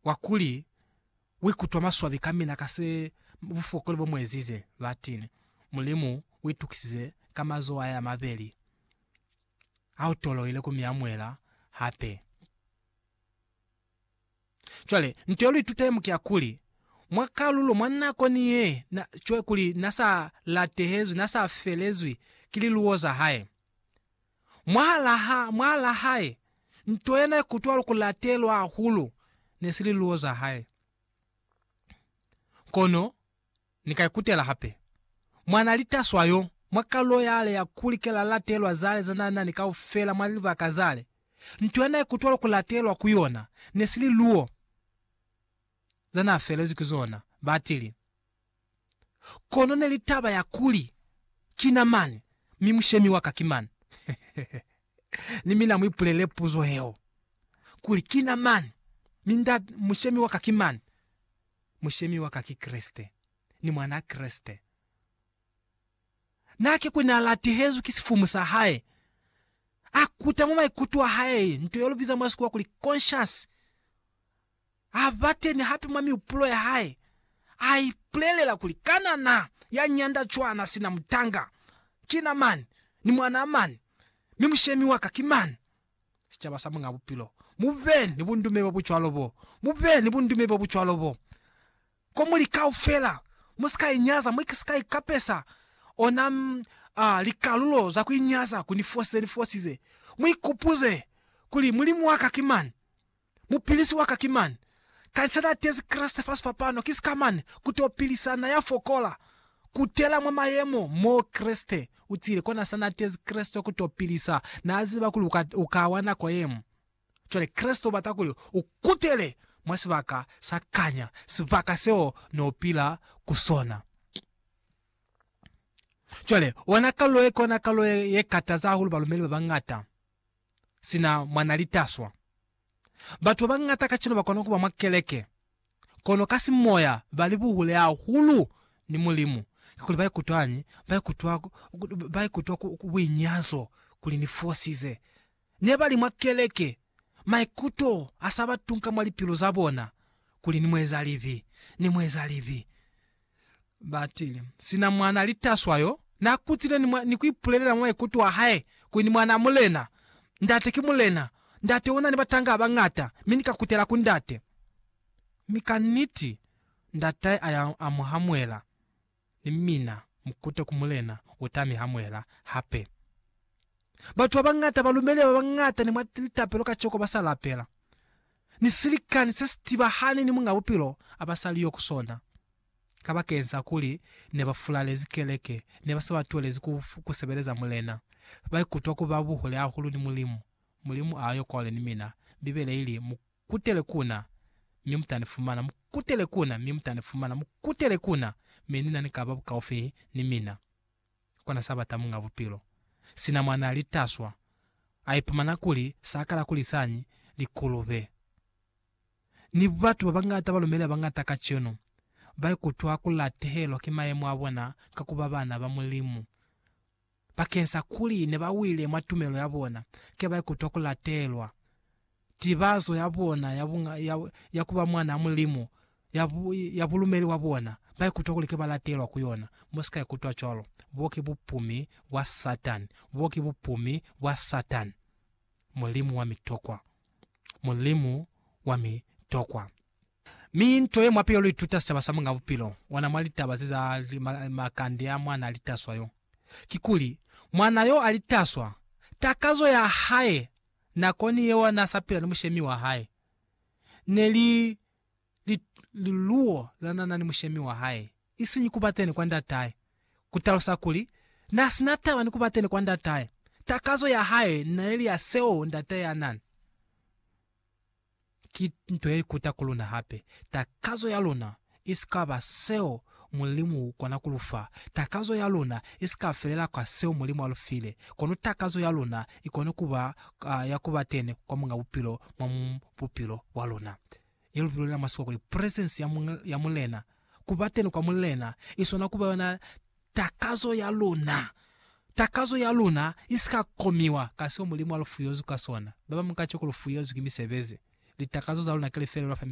wa kuli uikutwa maswabi ka mina ka se bufokoli bo muezize, batile, Mulimu uitukisize ka mazoho ahe amabeli ha utoloile ku miamuela hape. Cwale, nto ye luitutemo ki ya kuli, mwa kalulo, mwa nako ni ye na, cwale kuli na sa latehezwi, na sa felezwi ki liluwo za hae. Mwahalaha, mwahalaa hae, nto yena ikutwalo ku latelwa hahulu ne si liluwo za hae. Kono Ni ka ikutela hape, mwanaa litaswa yo, mwa kalulo yale ya kuli ke la latelwa zale za na nani kaufela mwa libaka zale, nto yena ikutwalo ku latelwa ku yona ne si liluwo za na felezwi ki zona, batili. Kono neli taba ya kuli, Kina mani, mi mushemi wa ka ki mani? Ni mina muipulele puzo yeo, kuli, Kina mani, mi nda, mushemi wa ka ki mani? Mushemi wa ka ki Kreste. Ni Mwanaa Kreste. Na ki kuli na latihezwi ki sifumu sa hae, a kuta mwa maikuto a hae nto yeo lu biza mwa Sikhuwa kuli conscience, A ba teni hape mwa mihupulo ya hae, a ipulelela kuli, Kana na, ya nyanda cwana sina mutanga, ki na mani, ni mwanaa mani, mi mushemi wa ka ki mani? Sicaba sa Muñaa Bupilo, mu be ni bundume bo bucwalo bo, mu be ni bundume bo bucwalo bo, ko muli kaufela. Mu si ka inyaza, mwa si ka ikapesa ona a, likalulo za ku inyaza ku ni fosize ni fosize. Mu ikupuze kuli Mulimu wa ka ki mani. Mupilisi waka ki mani. Kaisa na tezi Kreste fa sifapano, ki sika mani, kuto pilisa na ya fokola. Kutela mwa mayemo mo Kreste utile, kona sa na tezi Kreste kuto pilisa. Na ziba kuli uka, uka wa nako yemo. Cwale Kreste ubata kuli ukutele mwa sibaka sa kanya, sibaka seo ne upila ku sona. Cwale, ona kalulo ye, kona kalulo ye, ye kataza hahulu balumeli babañata. sina mwa na li taswa. Batu ba bañata kacenu ba kona ku ba mwa keleke, kono ka simoya ba li buhule hahulu ni Mulimu, kakuli ba ikutwañi? Ba ikutwa, ba ikutwa ku, ku buinyazo kuli ni fosize. Ne ba li mwa keleke, maikuto a sa ba tunka mwa lipilu za bona, kuli ni mu eza libi, ni mu eza libi. Batile. Sina mwana litaswa yo, na kutile ni, ni kuipulelela mwa maikuto a hae, kuli ni mwana a mulena. Ndate ki mulena. Ndate una ni batanga abangata, mi ni ka kutela ku ndate. Mi ka niti, ndatae aya a mu hamuela, ni mina mukute ku mulena uta mi hamuela hape. Batu abangata, balumeli babangata ni mwa litapelo kaciko basa lapela. ni silikani se si tibahani ni Muñ'a Bupilo a ba sa li yo ku sona. Kabakeñsa kuli ne ba fulalezi keleke, ne ba sa ba tuelezi ku, ku sebeleza Mulena. Ba ikutwa ku ba buhule hahulu ni Mulimu. Mulimu a yo kwale ni mina. Bibele i li, Mu kutele ku Na, mi mu ta ni fumana, mu kutele ku Na, mi mu ta ni fumana, mu kutele ku Na, mi ni na ni ka ba bukaufi ni mina. kona sa bata Muñ'a Bupilo. Sina mwa n'a li taswa, a ipumana kuli s'a kala ku lisañi, likulube, ni batu ba bañata. Balume ni ba bañata kacenu ba ikutwa ku latehelwa ki mayemo a bona ka ku ba bana ba Mulimu. Bakeñsa kuli ne ba wile mwa tumelo ya bona, kila ba ikutwa ku latehelwa. tibazo ya bona ya, bu, ya, ya kuba mwana wa Mulimu, ya, bu, ya bulumeli bwa bona, ba ikutwa kuli ki ba latelwa ku yona. Mu si ka ikutwa cwalo. Bo ki bupumi bwa Satani. Bo ki bupumi bwa Satani. Mulimu wa mitokwa. Mulimu wa mitokwa. Mi nto ye mwa pili yo lu ituta sicaba sa Muñ'a Bupilo ona mwa litaba ze za ma, makande a mwana a litaswa yo, kikuli, mwana yo a litaswa, takazo ya hae nakoni yeo n'a sa pila ni mushemi wa hae, ne li li liluwo za n'a na ni mushemi wa hae, isiñi ku ba teni kwa ndatahe, ku talusa kuli, n'a si na taba ni ku ba teni kwa ndatahe. Takazo ya hae n'a ili ya seo ndatahe a na ni. Ki nto ye ikuta ku luna hape. Takazo ya luna i si ka ba seo Mulimu u kona ku lu fa. Takazo ya luna i si ka felela ka seo Mulimu a lu file. Kono takazo ya luna i kona ku ba ya ku ba teni kwa Muñ'a Bupilo mwa bupilo bwa luna, ye lu bulelela mwa Sikwa kuli, presence ya Mulena. Ku ba teni kwa Mulena i swana ku ba yona takazo ya luna. Takazo ya luna i si ka komiwa ka seo Mulimu a lu fuyezwi ka sona. Ba bañwi kaciko lu fuyezwi ki misebezi. Litakazo za luna ki lifelelo fa misebezi.